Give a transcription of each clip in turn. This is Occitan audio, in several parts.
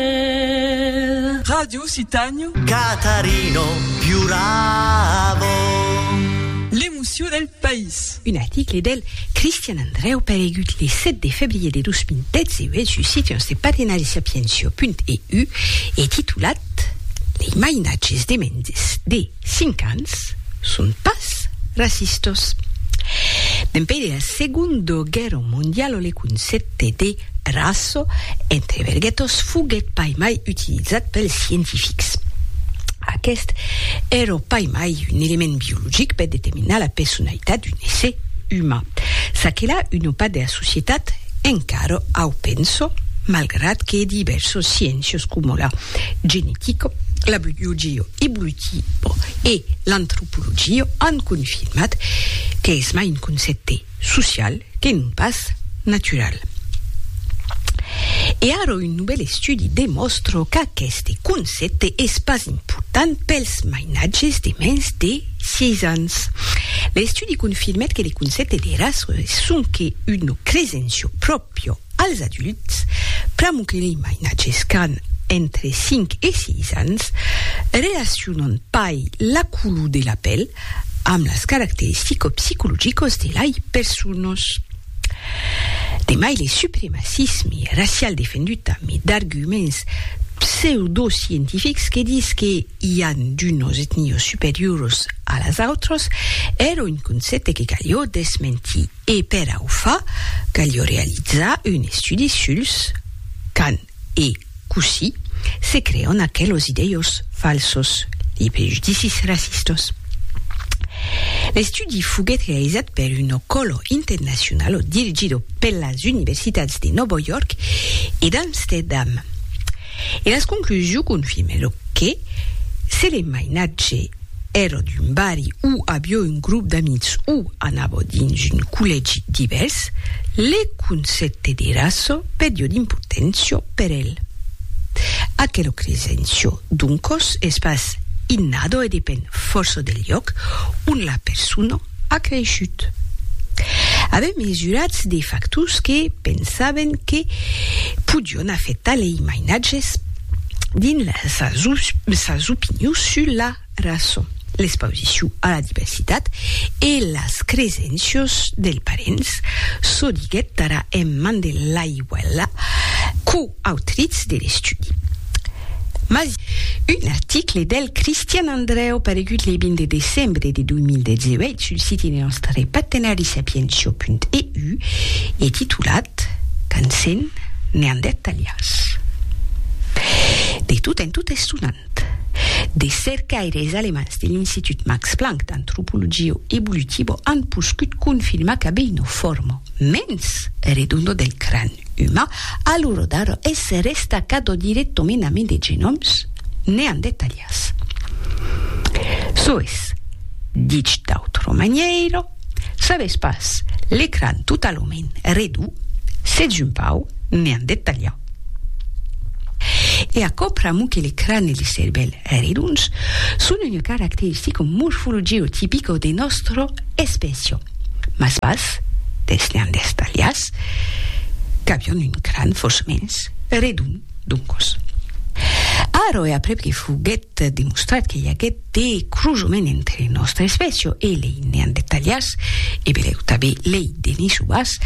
Vel. Ràdio Citanio. Catarino piuravo. L'emocion del país. Un article del Cristian Andrèu paregut le 7 de febrier de 2018 sus Sitiens de Parinarissapiencio.eu e titulat Les mainatges de Mendes de Cinc ans son pas racistos. Dempèi de la Segundo Guèrra Mondialo le concèpte de raço entre verguetos foguèt pas mai utilizat pels scientifics. Aqueste èra pas mai un element biologic per determinar la personalitat d'un èsser uman. Çaquelà una part de la societat encara au pensa, malgrat que divèrsos sciéncios coma la genetica, la biologia evolutiva, Eutipo e l'antropologia an confirmat qu'es mai un concèpte social que non pas natural. E ara un novèl estudi demòstra qu'aqueste concèpte es pas important pels mainatges de mens de 6 ans. L'estudi confirmèt que le concèpte de raça es sonque una cresencia pròpria Piò als adults, pr'amor que lei mainatges qu'an entre 5 e 6 ans relacionan pas la color de la pèl amb las caracteristiques psicologicas de lei personas. De mai le supremacisme racial defendut tambe d'arguments pseudoscientifics que dis que i an d'unas etnias superioras a las autras èra un concèpte que caliá desmentir. E per a o far, calió realizar un estudi suls quand e cossí se creon aquelos idèios falsos, li prejudicis racistos. L'estudi foguèt realizat per un ocòlo internacionalo dirigido per las universitats de Nòvo York e d'Amsterdam. E las conclusions confirmèron que se le mainatge Ero d'un barri où avió un grop d'amics où anavo dins un collègi divèrs, le concèpte de raço perdió d'importància per el. Aquero cresencio, doncos, es pas innado e depen fòrça del lloc on la persona A creishut. Avèm mesurats de factors que pensàvem que podion afectar lei mainatges dins sas opinions sus la rason, l'expausicion a la diversitat e las cresencios dels parents, çò diguèt tara en man de l'aiuèla, quo Autriz de l'estudi. Mas un article del Cristian Andrèu paregut le 20 de decembre de 2018 sul siti de nòstre partenari sapientia.eu e titulat Quand sèn neandertalians. De tot en tot estonant, de cercaires alemands de l'Institut Max Planck d'antropologia evolutiva an poscut confirmar qu'abeino forma mens redonda del cran. Uma, a lo rodar esse resta qu'a do dire tominami de genòms neandertalians. Soes, dich d'autro manièiro, sabes pas, l'ecran totalament redu, s'ètz un pau neandertalian. E aquò pr'amor que l'ecran e le cervèl redons son una caracteristica morfologio-tipica de nòstra espècia. mas pas dels neandertalians, qu'avián un cran fòrçamens redon d'un còs. Ara e aprèp que foguèt demostrat que i aguèt de crosament entre nòstra espècia e lei neandertalians, e belèu tanben lei denisovans,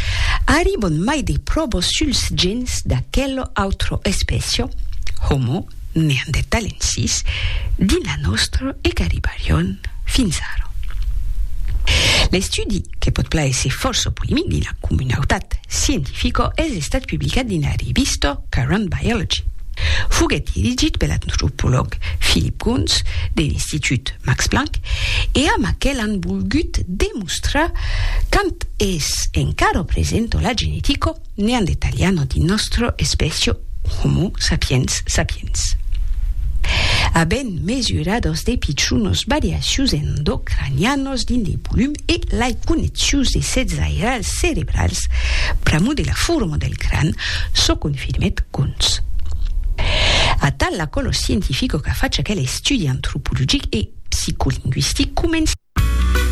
arribon mai de pròvas suls gèns d'aquela autra espècia, Homo neandertalensis dins la nòstra e qu'arribarion fins ara. L'estudi, que pòt plaéisser fòrça polemic dins la comunautat scientifica, es estat publicat dins la revista Current Biology. Foguèt dirigit per l'antropològ Philip Goons de l'Institut Max Planck e amb aquel an volgut demostrar quand es encara presenta la genetica Neandertaliano di nòstro espècio Homo sapiens sapiens. Avèn mesurados de pichonos variacius endocranianos dins de volum e lai connexius de sets airals cerebrals pr'amor de la forma del cran, çò confirmèt Kunz. Atal la qual lo scientifico qu'a fach aquel estudi antropologic e psicolingüistic comença.